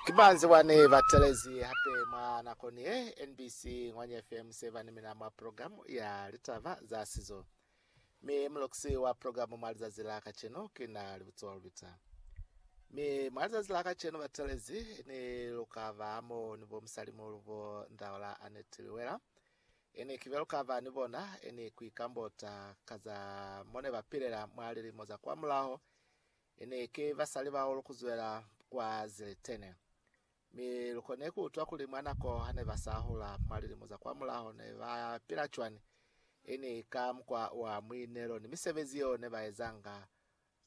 Ki banzi bani ba telezi hape mwa nako ni ye? NBC Ngwanya FM se ba ni mina mwa program ya litaba za sizo, mi muloxi wa program mwa lizazi la kacenu ki na Libutsiwa Lubita. Mi mwa lizazi la kacenu ba telezi ni lu ka ba mo ni bo musalimuhulu bo Ndaola Annette Liwela, ini kibe lu ka ba ni bona, ini ku ikambota ka za mone ba pilela mwa lilimo za kwa mulaho, Ene ki basali bao lukuzwela kwa Ziletene, mi lukone kuutwa kuli mwa nako hane basahula mwa lilimo za kwamulaho ne bapila cwani, ini ka mukwa wa muinelo ni misebezi yeo nebaezanga,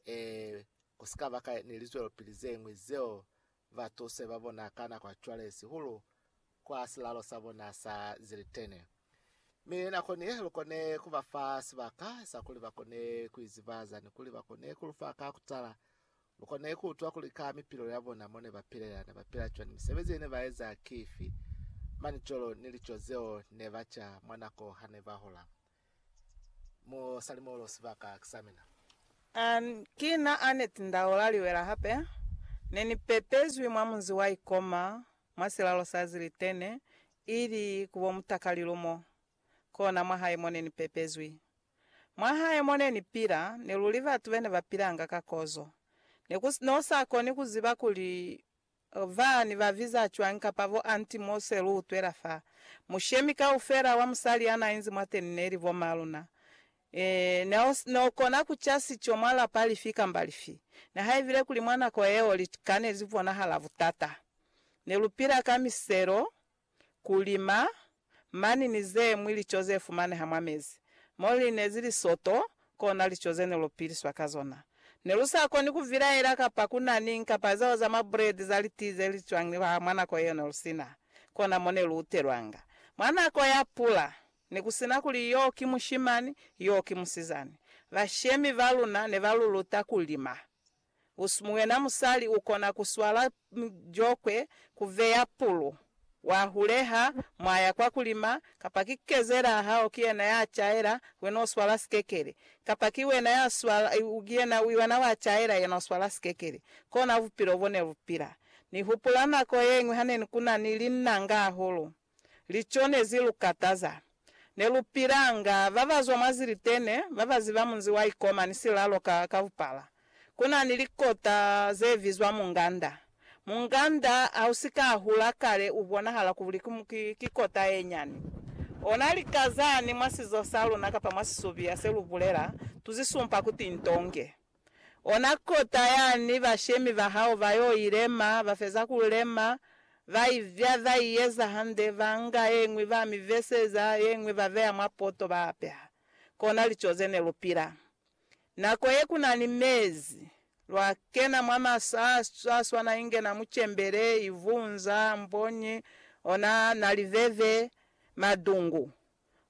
ee, kusikaba ka ni lizwelopili zeñwi zeo batuse ba bona ka nako ya cwale sihulu kwa silalo sa bona sa zilitene. Mi nako ni ye, lu kone ku ba fa sibaka sa kuli ba kone ku izibaza ni kuli ba kone ku lu fa ka kutala. Lu kone ku utwa kuli ka mipilelo ya bona mo ne ba pilela, ne ba pila cwani, misebezi ye ne ba eza ki ifi, manicolo ni lico zeo ne ba ca mwa nako ha ne ba hola. Mo sali molo sibaka ki sa mina. An, ki na Annette Ndaola Liwela hape. Ne ni pepezwi mwa munzi wa Ikoma, mwa silalo sa Zilitene, ili ku bo mutakalilu mo. Kona mwahae mo ne ni pepezwi. Mwahae mo ne ni pila, ne luli batu bene ba pilanga ka kozo. Ne ku, ne u sa koni ku ziba kuli Lva ni ba viza cwañi kapa bo anti mo se lu utwela fa? Mushemi kaufela wa musali ya na inzi mwateni neli bo ma luna. Ee, ne o, ne o kona ku ca sico mwa lapa lifi kamba lifi. Nihaibile kuli mwa nako yeo lika ne li bonahala butata, ne lu pila ka miselo, ku lima, mani ni ze ñwi lico ze fumaneha mwa mezi, mo li nezi lisoto, kona lico ze ne lu piliswa ka zona. Ne lu sa koni ku vilaela kapa ku na niñi kapa lizalo za mabuledi za litii ze li cwangilwaha mwa nako yeo ne lu si na kona mo ne lu utelwanga. Mwa nako ya pula, ne ku si na kuli yo ki mushimani, yo ki musizani, bashemi ba luna ne ba lu luta ku lima Muyena musali ukona kuswala jokwe, kuveya pulu, wahuleha, mwaya kwa kulima, kapa ki kezela hao kiyena ya caela, wena uswala sikekele. Kapa ki wena ya swala, kiyena wena wa caela, yena uswala sikekele. Kona bupilo bone lupila. Nihupula nako yeñwi hane kuna ni linnanga hahulu. Lico ne zi lu kataza. Ne lu pilanga ba ba zwa mwa zilitene, ba ba ziba munzi wa Ikoma ni silalo ka, ka bupala. Ku na ni likota ze bizwa munganda. Munganda ha u si ka a hula kale u bonahala kuli ki, ki, ki kota ye nyani. Ona lika zani mwa sizo sa luna kapa mwa sisubiya se lu bulela, tu zi sumpa kuti ntonge. Ona kota yani bashemi ba hao ba yo i lema, ba feza ku lema, ba i vya, ba i eza hande, ba nga ye ñwi ba mi veseza, ye ñwi ba beya mwa poto ba apeha. Kona lico ze ne lu pila. Nako ye ku na ni mezi, lwa kena mwa masa a sa swana inge na mucembele, ivunza, mbonyi, ona na liveve, madungu.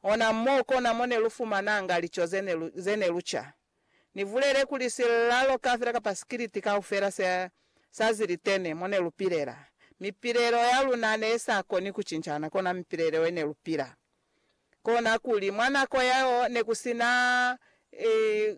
Ona mo kona mo ne lu fumananga lico ze ne lu ca. Ni bulele kuli silalo kafela kapa sikiliti kaufela se sa zilitene mo ne lu pilela, mipilelo ya luna ne sa koni ku cincana kona mipilelo ye ne lu pila. Kona kuli, mwa nako yeo ne ku si na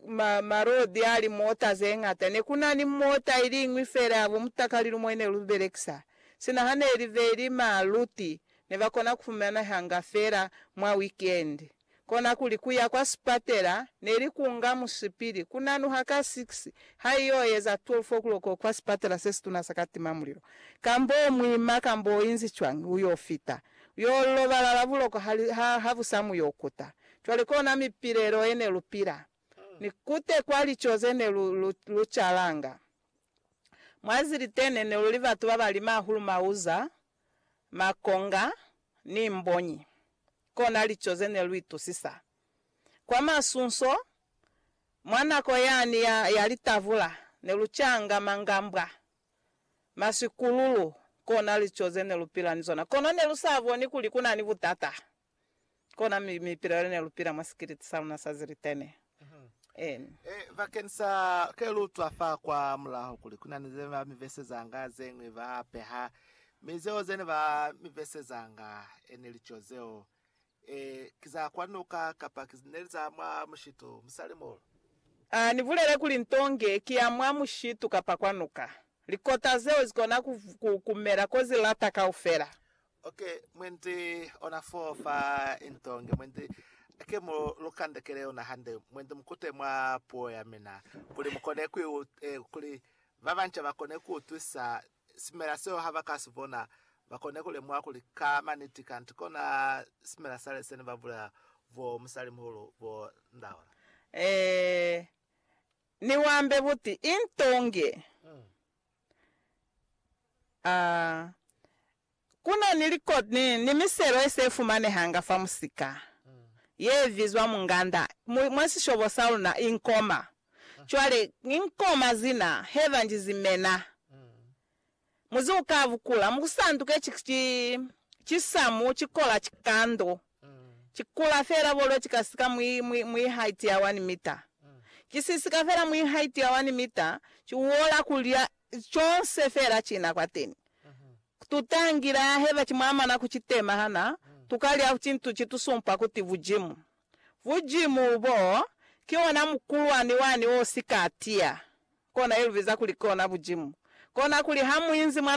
ma, malodi a limota ze ñata. Ne ku na ni mota i liñwi fela ya bo mutakalilumo ye ne lu belekisa. Sina ha ne li be li ma luti, ne ba kona ku fumanehanga fela mwa wikendi. Konakuli kuya kwa sipatela neli kunga musipili kunanuha ka 6 haiyo eza 12 o'clock kwa sipatela sesituna sa Katima Mulilo. Kambo muima kambo oinzi cwañi uyo fita, uyo lobalala buloko hali ha habusa muyo kuta. Cwale kona mipilelo yene lupila, ni kute kwa lico zene lu lu lucalanga. Mwa zilitene neluli batu babali mahulu mauza makonga, ni mbonyi, kona lico ze ne lu itusisa. Kwa masunso, mwa nako yani ya, ya litavula, ne lu canga mangambwa, masikululu, kona lico ze ne lu pila ni zona. Kono ne lu sa boni kuli ku na ni butata. Kona mi, mi pila lune lu pila mwa sikiliti sa luna sa zilitene. Amen. E, bakeni sa ke lu utwa fa kwa mulaho kuli ku na ni zene ba mi vesezanga zeñwi ba peha, mi zeo zene ba mi vesezanga e neli co zeo, e, ki za kwa nuka kapa ki neli za mwa mushitu, musali muulu. A ni bulele kuli nto nge ki ya mwa mushitu kapa kwa nuka. Likota zeo zi kona ku, ku, ku mela ko zi lata kaufela. Ok, mwendi ona fo fa into nge mwendi ke mu lu kandekele yona hande, mwendi mukute mwa puo ya mina, kuli mukone ku eh, kuli ba banca bakone ku utwisa simela seo ha ba ka si bona, bakone ku lemuha kuli ka maniti kanti kona simela sale sene ba bulela bo musalimuhulu bo Ndaola. Eh, ni wambe buti into nge. Mm. A Ku na ni likoti ni, ni miselo ye se fumanehanga fa musika ye bizwa munganda mu, mwa sishobo sa luna, i nkoma. Cwale, i nkoma zina he ba nji zimena, muzi u ka bukula, mu ku sanduke ki, ki, ki samu, ki kola, ki kando. Ki kula fela bolo ki ka sika mwi, mwi, mwi haiti ya wani mita. Ki si sika fela mwi haiti ya wani mita, ki uola kulya conse fela kina kwateni. Tutangile aheba ki mwamana ku ki tema hana tuka lya cintu ki tu sumpa kuti Bujimu. Bujimu bo, ki ona mukulwani wani o sika atiya. Kona ilubiza kuli ki ona Bujimu. Kona kuli ha mu inzi mwa